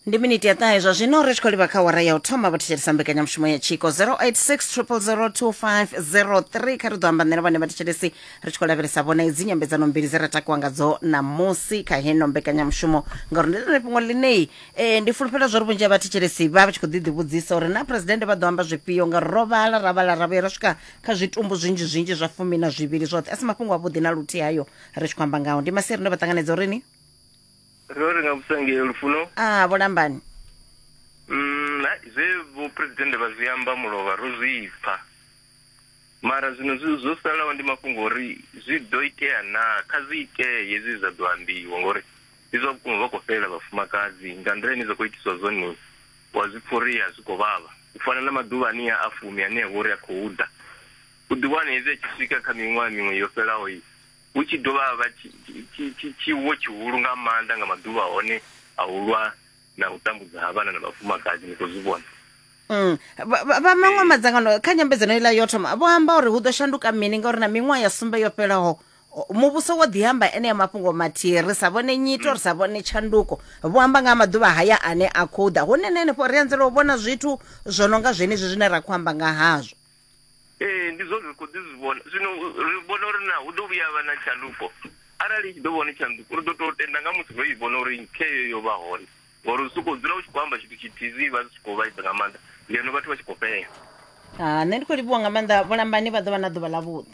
ndi miniti ya ṱahe zwa zwino ri tshi khou livha kha wara ya u thoma vho thetshelesa mbekanyamushumo ya tshiko 0860002503 kha ri ḓo amba nṋe na vhone vha thetshelesi ri tshi khou lavhelesa vhona idzi nyambedzano mbili dze ra takuwa ngadzo ṋamusi kha heno mbekanyamushumo ngauri ndi ḽone fhungo ḽinei e, ndi fulufhela zwa uri vhunzhi ha vhathetshelesi vha vha tshi khou ḓi ḓivhudzisa uri na phuresidennde vha ḓo amba zwifhio ngauri ro vhala ra vhala ra vhuya ra swika kha zwitumbu zwinzhi zwinzhi zwa fumi na zwivhili zwoṱhe a si mafhungo avhuḓi na luthihi hayo ri tshi khou amba ngawo ndi masiari ndo vha ṱanganedza uri ni ro ri nga vhusa ngei lufuno a vhulambani mm, zwe vhuphuresidennde vha zwi amba mulovha ro zwi pfa mara zwino zwo salaho ndi mafhungo uri zwi ḓo itea naa kha zwi itee hezwi zwa ḓo ambiwa ngori ndi zwa vhukuma vha khou fhelela vhafumakadzi nga nḓila ine zwa khou itiswa zwone wa zwi pfa uri a zwi khou vhavha u fana na maḓuvha ane a fumi ane a vha uri a khou ḓa u ḓiwana hezwi a tshi swika kha miṅwaha miṅwe yo fhelaho i Hu tshi dovha ha vha tshi- tshi- tshi- tshi- tshiwo tshihulu nga maanḓa nga maḓuvha a hone a u lwa na u tambudza ha vhana na vhafumakadzi ni khou zwi vhona Mm. Vha vha- vha maṅwe madzangano kha nyambedzano iḽa yo thoma vho amba uri hu ḓo shanduka mini ngauri na miṅwaha ya sumbe yo fhelaho o- muvhuso wo ḓiamba ene ya mafhungo mathihi ri sa vhone nyito ri sa vhone tshanduko vho amba nga ha maḓuvha haya ane a khou ḓa hune na henefho ri anzela u vhona zwithu zwo no nga zwenezwi zwine ra khou amba nga hazwo ee ndi zwone ri khou ḓi zwi vhona zwino ri vhona uri na hu ḓo vhuya vha na tshanduko arali i tshi ḓo vhona tshanduko ri ḓo tou tenda nga musi ro i vhona uri kheyo yo vha hone ngori u sokou dzula u tshi khou amba tshithu tshithihi zwi vha zwi tshi khou vhaisa nga maanḓa ngeno vhathu vha tshi khou fhela ha nṋe ndi khou livhuwa nga maanḓa vhulambani vha ḓo vha na ḓuvha ḽavhuḓi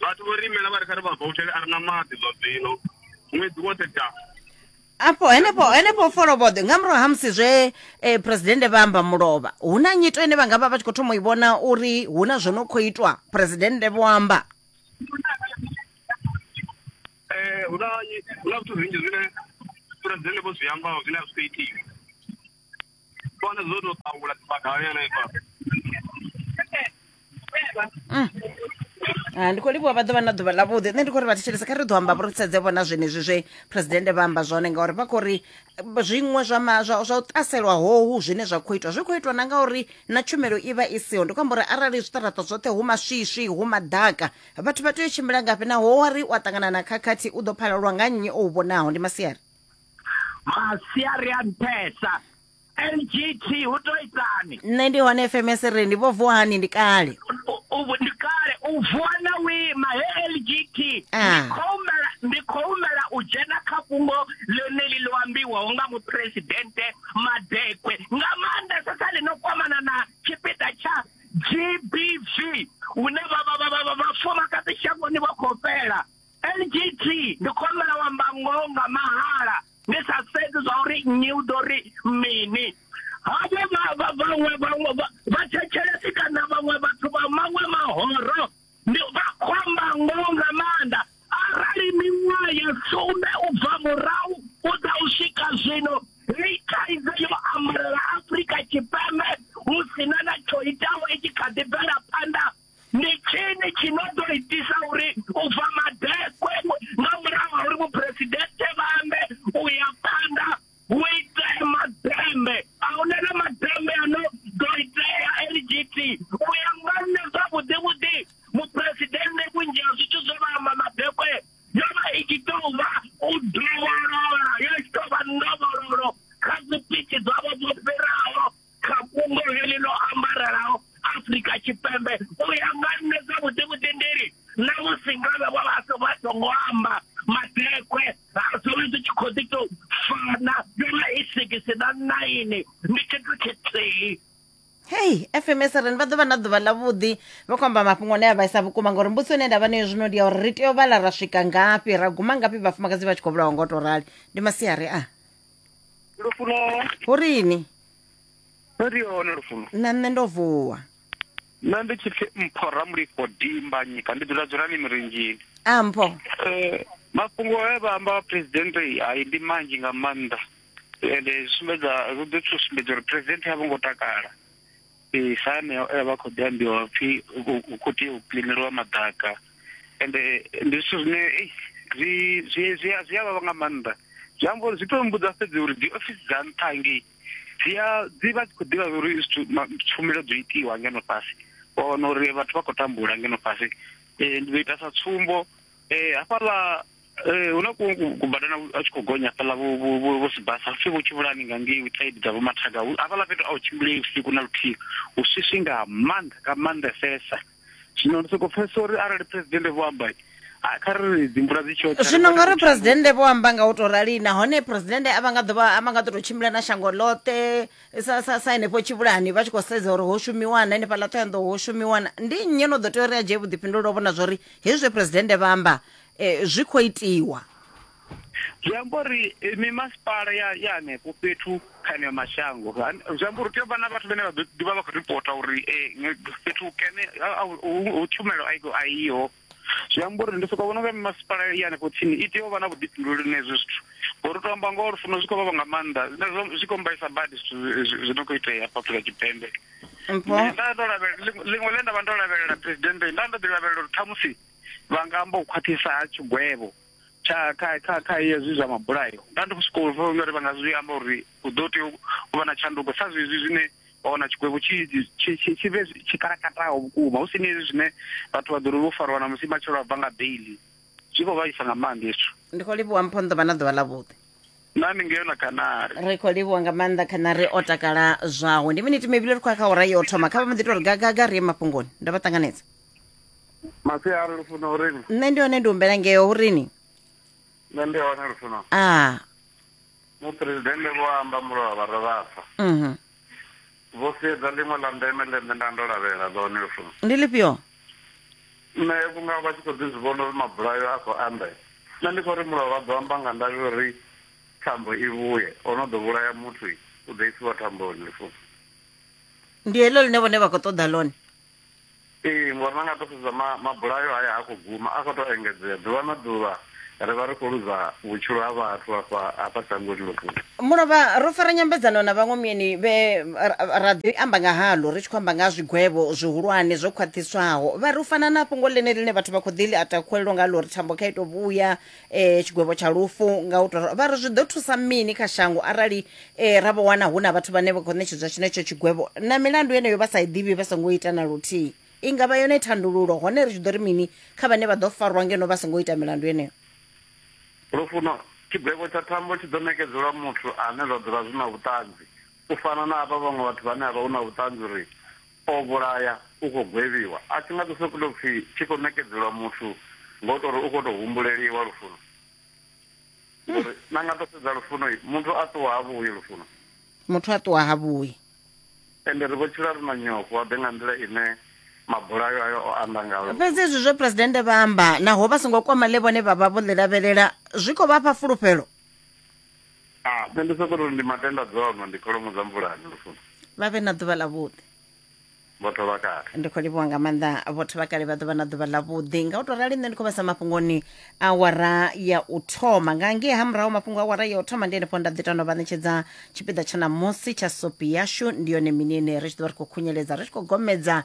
vhathu vho ri imela vha ri kha ri vha voutele a ri na maḓi zwa zwino ṅwedzi woṱhe da afho henefho henefho foloboḓe nga murahu ha musi zwe eh, presidennde vha amba mulovha hu na nyito ine vha nga vha vha tshi khou thoma u i vhona uri hu na zwo no khou itwa presidennde vho amba Eh, hu na hu na zwithu zwinzhi zwine presidennde vho zwi ambaho zwine a zwi khou itiwa Bwana zote utaula tibakawele kwa. Ah, ndi khou livhuwa vha ḓo vha na ḓuvha ḽavhuḓi nṋe ndi khou ri vha thetshelesa kha ri ḓo amba vho ri sedze vhona zwenezwi zwe presidennde vha amba zwone ngauri vha khou ri eh, zwiṅwe zwa ma- zwa zwa u ṱaselwa hohu zwine zwa khou itwa zwi khou itwa na ngauri na tshumelo i vha i siho ndi khou amba uri arali zwiṱaraṱa zwoṱhe hu maswiswi hu maḓaka vhathu vha tea u tshimbila ngafhi naho wa ri u a ṱangana na khakhathi u ḓo phalelwa nga nnyi o u vhonaho ndi masiari masiari a nṱhesa ngt hu to itani nṋe ndi hone fms ri ndi vho vuwa hani ndi kale U- u- ndi kale u vuwa na u ima he lgt Ah. Ndi khou humela- ndi khou humela u dzhena kha fhungo ḽeneli ḽo ambiwaho nga muphuresidennde madekwe nga maanḓesa sa ḽi no kwamana na tshipiḓa tsha gbv hune vha- vha- vha- vha- vha- vhafumakadzi shangoni vha khou fhela ngt ndi khou humbela u amba ngoho nga mahala ndi sa sedzi zwa uri nnyi u ḓo ri mini havho vha- vha- vhaṅwe vhaṅwe vha- vhathetshelesi kana vhaṅwe vhathu vha maṅwe mahoro ndi vha khou amba ngoho nga maanḓa arali miṅwaha ya sumbe u bva murahu u ḓa u swika zwino hei thaidzo yo ambalela afurika tshipembe hu si na na tsho itaho i tshi kha ḓi bvela phanḓa ndi tshini tshi no ḓo itisa uri u bva madekwe nga murahu ha uri muphuresidennde vha ambe u ya phanḓa hu itee madembe a hu na madembe a no ḓo itea lgt u ya nga nṋe zwavhuḓi vhuḓi muphuresidennde vhunzhi ha zwithu zwo vha amba madekwe yo vha i tshi tou vha u dovholola yo tshi tou vha ndovhololo kha dzipitshi dzavho dzo fhiraho kha fhungo heḽi ḽo ambarelaho afurika tshipembe u ya nga nṋe dza vhuḓi vhuḓindiri na musi ngavhe vha vha so vha songo amba madekwe ha zwono zwi tshi khou ḓi tou fana yona i sigisi na naini ndi tshithu tshithihi hei fms ren vha ḓo vha na ḓuvha ḽa vhuḓi vha khou amba mafhungo ane a vhaisa vhukuma ngauri mbudziso ine nda vha nayo zwino ndi ya uri ri tea u vhala ra swika ngafhi ra guma ngafhi vhafumakadzi vha tshi khou vhulawa ngo to rali ndi masiari a lufuno hu rini no ri hone lufuno na nṋe ndo vuwa nṋe ndi tshi pfi mpho ramulifho dimba nyika ndi dzula dzulani mirinzhini a mpho um eh, mafhungo e vha amba presidente hai ndi manzhi nga maanḓa ende zwi sumbedza zwi ḓo thusumbedza uri presidente a vho ngo takala Ee, sa aneo e a vha khou ḓi ambiwa pfhi hu khou tea u kiḽineliwa maḓaka ende ndi zwithu zwine zwi zwi zwi a zwi a vhavha nga maanḓa zwi amba uri zwi to mmbudza fhedzi uri dzi ofisi dza nṱha hangei dzi a dzi vha dzi khou ḓivha uri zwithu tshumelo dzo itiwa ngeno fhasi wa wana uri vhathu vha khou tambula ngeno fhasi ndi ḓo ita sa tsumbo hafhaḽa ee hu na kubadana a tshi khou gonya fhaḽa vho sibasa pfhi vho tshivhulani nga ngei witsaidi dza vhomathaga hafhaḽa fhethu a u tshimbulei vhusiku na luthihi hu swiswi nga maanḓa nga maanḓesesa zwino ndi sokou pfhesesa uri arali phuresidennde vho amba kha ri dzi mvula dzi tshi zwino nga uri phuresidennde vho amba nga u tou rali nahone phuresidennde a vha nga ḓovha a vha nga ḓo tou tshimbila na shango ḽoṱhe sa sa sa henefho tshivhulani vha tshi khou sedza uri ho shumiwana henefha ḽa ṱhoyanḓo ho shumiwana ndi nnyi no ḓo tea uri a dzhie vhuḓifhinduleli o vhona zwa uri hezwi phuresidennde vha amba E, zwi khou itiwa. Zwi amba uri e, mimasipala ya ya hanefho fhethu kha eneo mashango, zwi amba uri tea u vha na vhathu vhane vha ḓo ḓivha vha khou ripota uri e, fhethu hukene hu tshumelo a iho. Zwi amba uri ndi sokou vhona nga mimasipala ya hanefho tsini i tea u vha na vhuḓifhinduleli na hezwo zwithu ngori u tou amba ngoho lufuno zwi khou vhavha nga maanḓa zwine zwi khou mbaisa badi zwithu zwi no khou itea hafha afrika tshipembe nda ndo lavhelela ḽiṅwe ḽe nda vha ndo lavhelela presidente nda ndo ḓi lavhelela uri ṱhamusi vha nga amba u khwaṱhisa ha tshigwevho tsha kha kha kha hezwi zwa mabulayo nda ndi sokou pfha uri vha nga zwi amba uri hu ḓo tea u vha na tshanduko sa zwezwi zwine wa wana tshigwevho tshi tshi tshi tshi vhe tshi kalakataho vhukuma hu si ni hezwi zwine vhathu vha ḓo ri vho fariwa na musi matshelo a bva nga beili zwi khou vhaisa nga maanḓa hezwo ndi khou livhuwa mpho nḓo vha na ḓuvha ḽavhuḓi na ni ngeo na kanari ri khou livhuwa nga maanḓa khanari o takala zwawe ndi miniti mivhili ri khou ya kha ora yo thoma kha vha mbo ḓi to ri gagaga ri ye mafhungoni ndo vha ṱanganedza masiari lufuno urini nṋe ndi hone ndi humbela ngeo urini nṋe ndi hone lufuno a muphuresidennde vho amba mulovha vha rovhasa mhm vho sedza ḽiṅwe ḽa ndeme ḽe nṋe nda ndo lavhelela ḽone lufuno ndi lifhio nṋe vhunga vha tshi khou ḓi zwi vhona uri mabulayo a khou anda nṋe ndi khou ri mulovha ḓo amba nga ndavhi uri thambo i vhuye o no ḓo vhulaya muthu u ḓo isiwa thamboni lufuno ndi heḽo ḽine vhone vha khou ṱoḓa ḽone Ee, ngori na nga to sedza ma, mabulayo haya ha khou guma, a khou tou engedzea. Ḓuvha na ḓuvha ri vha ri khou luza vhutshilo ha vhathu hafha, hafha shangoni ḽihulu. Mulovha, ro fara nyambedzano na vhaṅwe mieni vhe ra ḓi amba nga haḽo ri tshi khou amba nga ha zwigwevho zwihulwane zwo khwaṱhiswaho. Vha ri u fana na fhungo ḽeneḽi ḽine vhathu vha khou ḓi ḽi atakhulelwa ngaḽo uri thambo kha i tou vhuya eh, tshigwevho tsha lufu nga u tou ra- vha ri zwi ḓo thusa mini kha shango arali eh, ra vho wana hu na vhathu vhane vha khou ṋetshedzwa tshenetsho tshigwevho na milandu yeneyo vha sa i ḓivhi vha songo ita na luthihi i nga vha yone thandululo hone ri tshi ḓo ri mini kha vhane vha ḓo farwa ngeno vha songo ita milandu yeneyo lufuno tshigwevho tsha thambo tshi ḓo nekedzelwa muthu ane zwa dzula zwi na vhuṱanzi u fana na havha vhaṅwe vhathu vhane havha hu na vhuṱanzi uri O vhulaya, u khou gwevhiwa, a tshi nga ḓo sokou tou pfi tshi khou ṋekedzelwa muthu nga u tou ri u khou tou humbuleliwa lufuno. Ngori na nga tou sedza lufuno, muthu a ṱuwa ha vhuyi lufuno. Muthu a ṱuwa ha vhuyi. Ende ri vho tshila ri na nyofho, wa ḓe nga nḓila ine mabulayo ayo o anda ngayo lufuno. Fhedzi hezwi zwe Phresidennde vha amba, naho vha songo kwama ḽe vhone vha vha vho ḽi lavhelela, zwi khou vha fha fulufhelo. Ah, nṋe ndi soko ri ndi matenda dzono ndi kholomo dza mvulani lufuno. vha vhe na ḓuvha ḽavhuḓi Vhotho vha kale. ndi khou livhuwa nga maanḓa vhotho vha kale vha ḓo vha na ḓuvha ḽavhuḓi nga u tou rali nṋe ndi khou vhasa mafhungoni awara ya u thoma nga ngei ha murahu mafhungo awara ya u thoma ndi henefho nda ḓi tano vha ṋetshedza tshipiḓa tsha ṋamusi tsha sopi yashu ndi yone mini ine ri tshi ḓo vha ri khou khunyeledza ri tshi khou gomedza